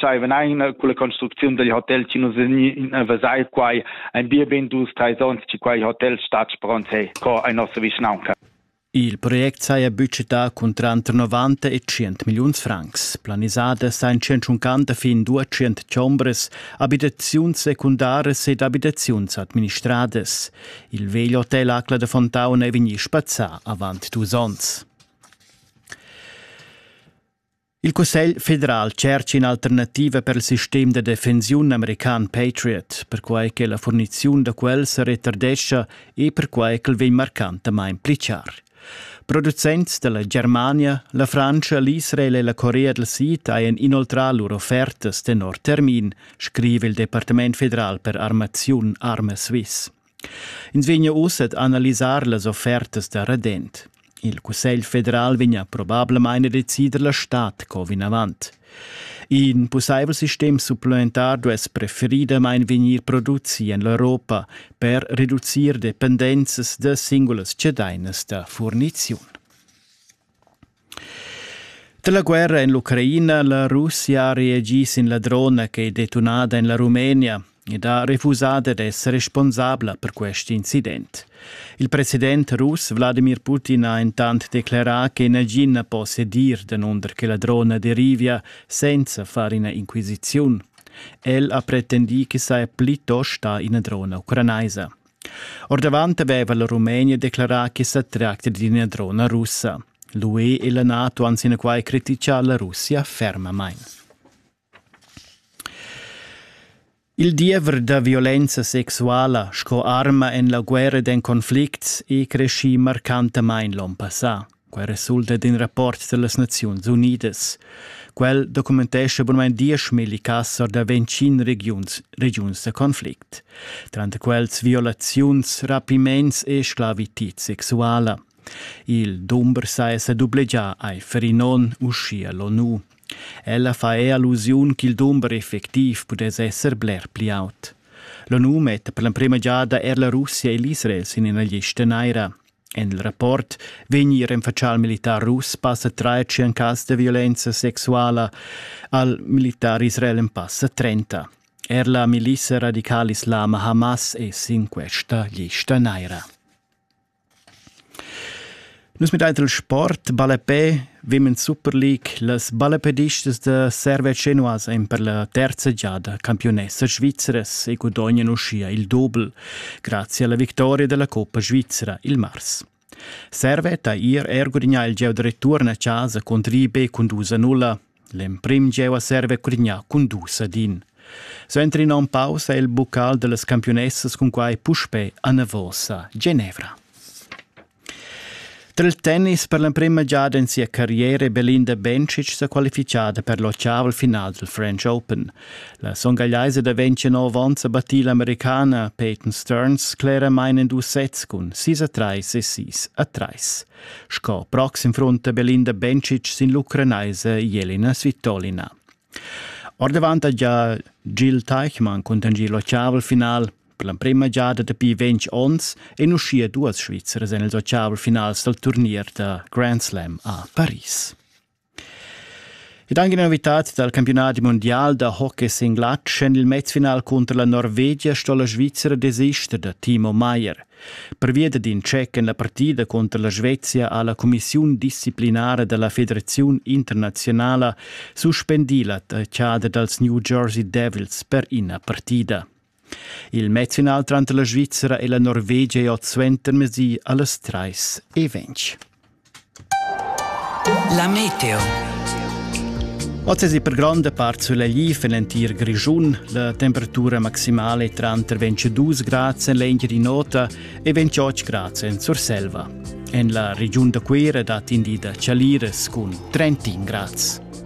dschaiven ein culla construcziun dil hotel chi nus vegni in vesai quai ein bia ben dus treis ons chi quei hotel stat spront hey co ei nossa vischnaunca Il project saja budgetà cun tranter 90 e 100 milliuns francs. Planisada sain 150 fin 200 chombres, abitaziuns secundaras ed abitaziuns administradas. Il vegl hotel Acla de Fontauna è vegnì spazzà avant dus onns. Il Cussegl federal tschercha in'alternativa per il sistem da defensiun american Patriot, perquai che la furniziun da quel se retardescha e perquai ch'el vegn marcantamain pli char. Producents dalla Germania, la Frantscha, l'Israel e la Corea del Sid hajan inoltrà lur offertas tenor termin, scrive il Departament federal per armaziun Arme Swiss. Ins vegnia uss ad analisar las offertas da redent. Il Cussegl federal vegnia probablamain a decider la stad co vinavant. In pussaivel sistem supplementar duess preferidamain vegnir produci en l'Europa per reducir dependenzas da singulas cedainas da furniziun. Dalla guerra en l'Ucraina la Russia ha reagì sin la drona che è detunada en la Rumenia ed ha refusà dad essere responsabla per quest incident. Il president russ Wladimir Putin ha intant declerà che nagin na po sedir danunder che la drona derivia senza far ina inquisiziun. El ha pretendì ch'i saja plitost sta ina drona ucranaisa. Ordavant aveva la Rumenia declarà ch'i sa tracti d'ina drona russa. L'UE e la NATO han sinaquai criticà la Russia fermamain. Il diever da violenza sexuala sco arma en la guerra d'en conflicts è creschì marcantamain l'onn passà. Quai resulta d'in rapport da las Naziuns Unidas. Quel documentescha bunmain dieschmilli cass or da ventschin regiuns, regiuns da conflict. Tranter quels violaziuns, rapiments e sclavitid sexuala. Il dumber sa è sa dublegià ai Ferinon, uschia l'ONU. Ella fa è allusiun ch'il dumber effectiv pudess esser bler pli aut. L'ONU metta per l'emprima giada er la Russia e l'Israel sin ina lista naira. En il rapport vegni renfatschà al militar russ passa tratg en cas da violenza sexuala al militar israel en passa 30. Er la milissa radical islama Hamas è sin questa lista naira. Nus mit il sport balapè Women's Super League las balapedistas da Serve Genoas ein per la terza giada campionessa svizras e gudognano uschia il doble. Grazie alla victoria della Coppa Svizzera il mars. Servet ha ir er gudignà il gieu da return a casa contro IB cun 2 nulla. L'emprim gieu a serve gudignà cun 2 din. Suenter in onn pausa è il buccal delle campionesse con quai puspè a Navosa, Genevra. Tra il tennis per l'emprema giada en sia carriera è Belinda Bencic sa qualifichada per l'ottaval final dal French Open. La songagliaisa da 29 onns ha battì l'Americana Peyton Stearns cleramain en dus sets cun 6 a 3 e 6 a 3. Sco proxim frunta Belinda Bencic sin l'ucranaisa Jelena Svitolina. Ordavant ha già Jill Teichmann cuntanschì l'ottaval final Per l'emprema giada dapi ventg onns ein uschia duas Svizras en ils ottaves finals dal turnier da Grand Slam a Paris. Ed anche una novità dal campionato mondiale da hockey singlat en il mezfinal contro la Norvegia sto la Svizzera desister da Timo Meier. Per via d'in check en la partida contro la Svezia ha la Commissione disciplinare della Federazione Internazionale suspendi la tachada dals New Jersey Devils per ina partida. Il medicinal tranter la Svizra e la Norvegia è oz suentermesi a las trais e ventg. La meteo. Oz è per gronda part sulegl en l'entir Grischun. La temperatura maximale è tranter 22 grad en l'Engiadin'Ota e 28 grad en Surselva. En la regiun da Cuira dat in di da chalires cun 31 grad.